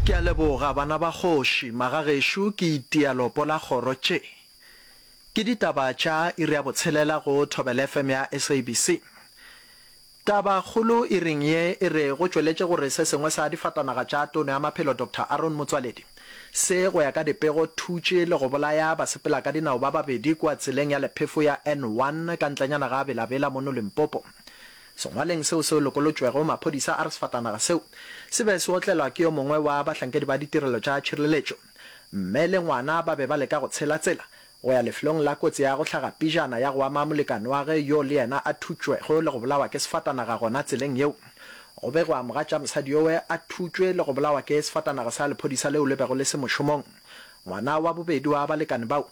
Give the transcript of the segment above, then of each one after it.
Ke a leboga, bana ba kgoši, magagešo ke itia lopo la kgoro tše. Ke ditaba tša iri ya botshelela go Thobela FM ya SABC. Taba kgolo iring ye e re go tšweletše gore se sengwe sa difatanaga tša Tono ya Maphelo Doctor Aaron Motsoaledi se, go ya ka dipego, thutše le go bolaya basepelakadinao ba babedi kua tseleng ya lephefo ya N1 ka ntlenyana ga Bela Bela mono Limpopo. Sengwalweng seo se lokolotšwego, maphodisa a re sefatanaga seo se be se otlelwa ke yo mongwe wa bahlankedi ba ditirelo tša tšhireletšo. Mme le ngwana ba be ba leka go tshela tsela go ya lefelong la kotsi ya go hlaga pijana ya go ama molekane wa ge yo le yena a thutšwego le go bolawa ke sefatanaga gona tseleng yeo. Go begwa mogatša mosadi yowe a thutšwe le go bolawa ke sefatanaga sa lephodisa leo le bego le se mošomong. Ngwana wa bobedi wa balekane bao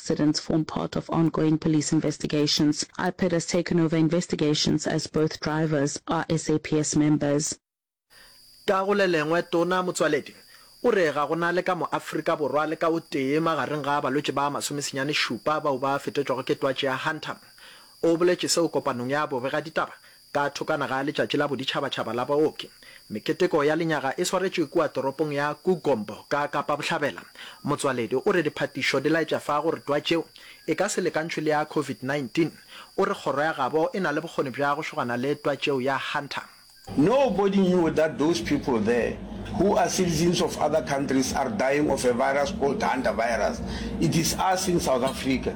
Incidents form part of ongoing police investigations. IPID has taken over investigations as both drivers are SAPS members. Ka go le lengwe, Tona Motsoaledi o re ga go na le ka mo-Afrika Borwa le ka o tee magareng ga balwetši ba masomesenyane šupa bao ba fetetšwago ke twatši ya Hunter. O boletše seo kopanong ya bobegaditaba Ka thokwana ga Letšatši la Boditšhabatšhaba la Baoki, meketeko ya lenyaga e swaretšwe kua toropong ya Kugombo ka Kapa Bohlabela. Motswaledi o re diphatišo di laetša fa gore twa tšeo e ka se lekantšhwe le ya COVID-19. O re kgoro ya gabo e na le bokgoni bja go šogana le twa tšeo ya Hunter. Nobody knew that those people there, who are citizens of other countries, are dying of a virus called Hunter virus. It is us in South Africa.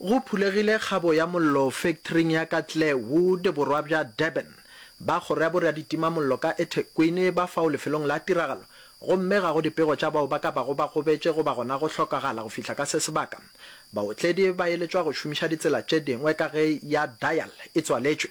Go phulegile kgabo ya mollo fektoring ya ka Clarewood, borwa bja Durban. Ba kgoro ya boraditimamollo ka eThekwini ba fao lefelong la tiragalo gomme ga go dipego tša bao ba ka bago ba gobetše goba gona go hlokagala go fihla ka se sebaka. Baotledi ba eletšwa go šomiša ditsela tše dingwe ka ge ya Dial e tswaletšwe.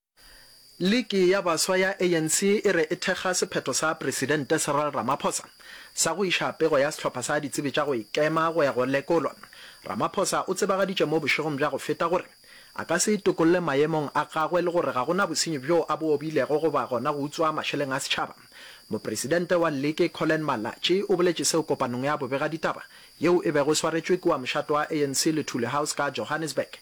Liki ya baswa ya ANC e re e thekga sephetho sa Presidente Cyril Ramaphosa sa go iša pego ya sehlopha sa ditsebi tša go ikema go ya go lekolwa. Ramaphosa o tsebagaditše mo bošegong bja go feta gore a ka se itokolle maemong a gagwe le gore ga go na bosenyi bjo a bo obilego goba gona go utswa mašeleng a setšhaba. Mopresidente wa Liki Collen Malatji o boletše seo kopanong ya bobegaditaba yeo e bego e swaretšwe kua mošate wa ANC Luthuli House ka Johannesburg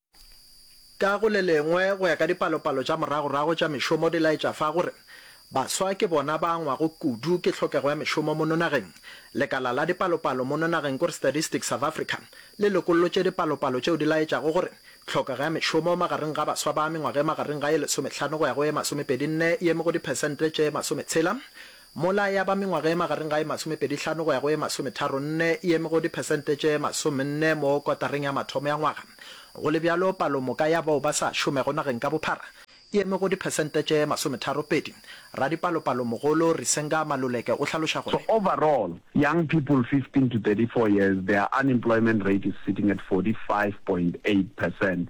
Ka go le lengwe, go ya ka dipalopalo tša moragorago tša mešomo di laetša fa gore baswa ke bona ba angwago kudu ke tlhokego ya mešomo mono nageng. Lekala la dipalopalo mono nageng kore Statistics South Africa le lokollotše dipalopalo tšeo di laetšago gore tlhokego ya mešomo magareng ga baswa ba mengwaga e magareng ga ye lesomehlano go ya go ye masomepedi-nne e eme go diphesente tše masometshela Mola ya ba mengwaga e magareng ga e masomepedi hlano go ya go e masometharo nne e eme go diphesente tše masomenne mo kotareng ya mathomo ya ngwaga. Go le bjalo, palomoka ya bao ba sa šomego nageng ka bophara e eme go diphesente tše masometharo pedi. Radipalopalomogolo Risenga Maluleke o hlaloša So gore. overall, young people 15 to 34 years, their unemployment rate is sitting at 45.8 percent.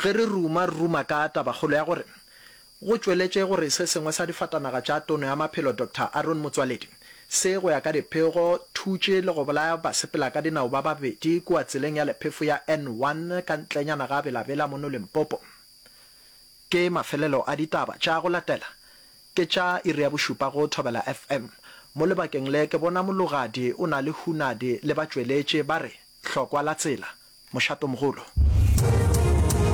Ge re ruma, re ruma ka tabakgolo ya gore go tšweletšwe gore se sengwe sa difatanaga tša Tono ya Maphelo Doctor Aaron Motsoaledi se, go ya ka diphego, thutše le go bolaya basepelakadinao ba babedi kua tseleng ya lephefo ya N one ka ntlenyana ga Bela Bela mono Limpopo. Ke mafelelo a ditaba tša go latela Ke tša iri ya bošupa go Thobela FM. Mo lebakeng le ke bona mologadi o na le hunadi le batšweletši ba re, Hlokwa la tsela. Mošatomogolo.